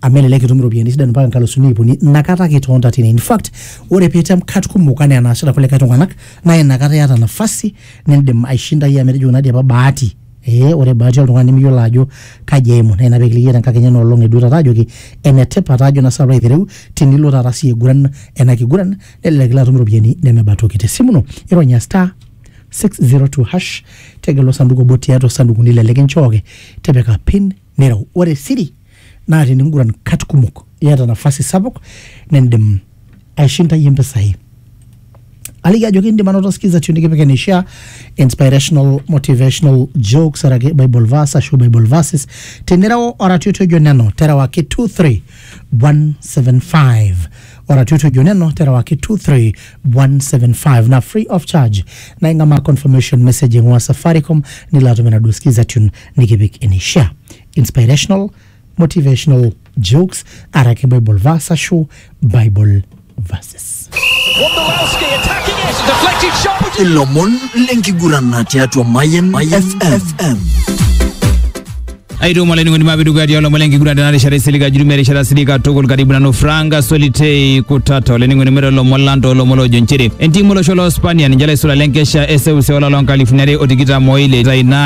amu elelek itum iropiyiani sidan mpaka nkalusuni iip uni inakata ake itonta tine in fact ore pitem kat kumok anaa enaasita kulikae tung'anak naa inakata iyata nafasi nindim aishindayie amu etejo kuna dii apa bahati ee ore bahati oltung'ani nimiyiolo ajo kaji eimu naa ina pekilikii iyie tenkakenya ena olong eduo taata ajoki enetipat ajo naa sinanu alo aitereu tinilo taata sii aiguran ena kiguran nelelek ilo atum iropiyiani nemeba toki tesimu ino ironya star 602 hash tegelu osanduku obo tiatua osandukuni lele kinchooki tipika pin nireu. Ore siri naa teninguran kat kumok iyata nafasi sapuk nindim aishindayie mpisai. Aliki ajoki indim anoto skiza tune nikipik eneishaa, inspirational, motivational, jokes araki bible verse ashu bible verses. Tinireu oratioti ojo neno terewaki 23175. Oratioti ojo neno terewaki 23175 na free of charge. Na ing'amaa confirmation message ing'ua Safaricom nilo atum enaduo skiza tune. nikipik eneishaa. Inspirational, motivational jokes araki Bible verse ashu Bible verses. Wondolowski attacking it, deflected shot. which is ilomon lenkiguran tiatua Mayan FM. aituma olainining'oni maapidukuya tialo omon lenkiguran tena rishata isilig ajuru merishata silig katukul karibu nanu franka solitei kutata olainining'oni mero lomon lang toolomon loojo nchere entiim olosho loo spania ninche laisula lenkesha eseuseu olapa loo nkalifuni are o tikitam oile itaina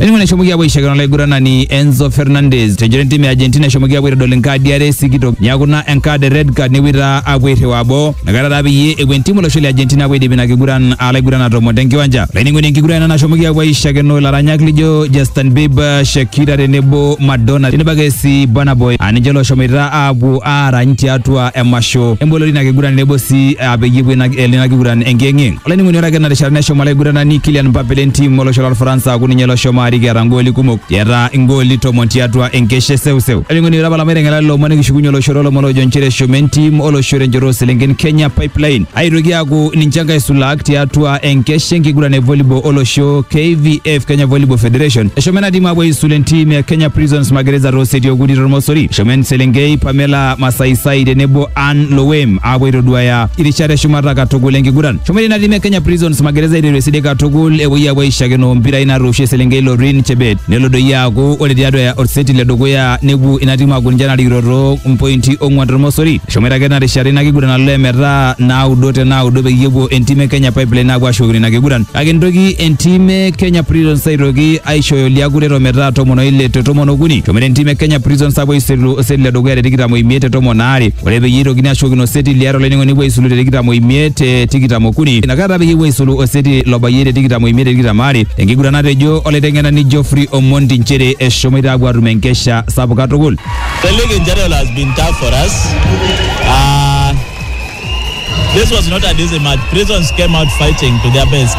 Elimu neshomoki apuo aishakino olaiguranani Enzo Fernandez tenchoto entim e Argentina eshomoki apuo aitodol enkaadi are sikitok neaku naa enkaad e red card nepuoi taa apuo airriwaa boo nakata taa peyie epuo entimu olosho le Argentina apuo aidip ina kiguran alaiguran atomon tenkiwanja laining'oni enkiguran ena nashomoki apuo aishakino ilaranyak lijo Justin Bieber, Shakira tenebo Madonna tenebo ake sii Burna Boy aa ninche looshomoita apuo aarany tiatua emasho emboloto ina kiguran tenebo sii aa peyie epuo ina kiguran enkiyeng'yeng'. olainining'oni ore ake ena rishata neshomo olaiguranani Kylian Mbappe le ntiim olosho lolfaransa aaku ninye loshomo arik eeta ngooli kumok eeta ngooli tomon tiatua enkeshe seuseu olainining'oni ore apa lama aiteng'elare lomon nikishukunye olosho toolomon oojo nchere eshomo entim olosho tenchoto ooselenken Kenya Pipeline aitoki aaku ninche nkaisulaak tiatua enkeshe enkiguran e volleyball olosho KVF Kenya Volleyball Federation eshomo ena tim aapuo aisul entim e Kenya Prisons Magereza tooseti okuni tormosori eshomo enselenkei Pamela Masaisai tenebo Ann Lowem aapuo aitoduaya irishat eshumata katukul enkiguran. Shomoita ina tim e Kenya Prisons magereza aiteru esidai katukul epuoi aapuo aishakino mpirai natoosho eselenkei Lorin Chebet nelo doi aaku ore tiatua oseti le dukuya nepuo ina tim aaku ninche narikito too mpointi ong'uan tormosori. Eshomoita ake ina rishata ina kiguran alo emetaa naudo te naudo peyie epuo entim e Kenya Pipeline aapuo ashukokino ina kiguran. Kake nitoki entim e Kenya Prisons aitoki aishooyo liakuret ometaa tomon oile te tomon okuni. Eshomoita entim e Kenya Prisons aapuo aisulu oseti le dukuya te tikitam oimiet te tomon aare. ore peyie eitokini ashukokino oseti liare olainining'oni epuo aisulu te tikitam oimiet te tikitam okuni inakata peyie epuo aisulu oseti lobayie te tikitam oimiet te tikitam aare enkiguran natejo olaiteng'enani Geoffrey Omondi inchere eshomoita aapuo aatum enkesha sapuk katukul. The league in general has been tough for us. Uh, this was not an easy match. Prisons came out fighting to their best.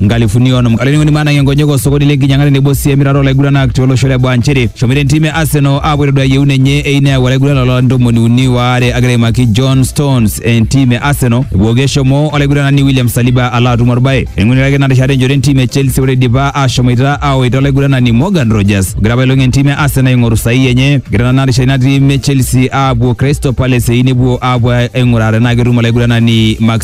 nkalifuni onom olainining'oni maanang'ie nkonyek osokoni le nkinyang'a tenebo sii emirata olaiguranak tiolosho le baa nchere eshomoita entim e Arsenal aapuo aitodua yieun enye eyieu neyau olaiguranani loo ntomoni uni waare agira aimaki John Stones entim e Arsenal epooki eshomo olaiguranani William Saliba alo atum orbae eing'urita ake ina rishata enjoto entim e Chelsea ore eidipa aashomoita aawaita olaiguranani Morgan Rogers ogira apailong entim e Arsenal aing'oru sahihi enye egira nena rishata ina tim e Chelsea aapuo Crystal Palace eyieu nepuo aapuo aing'uraa tenaa ketum olaiguranani Max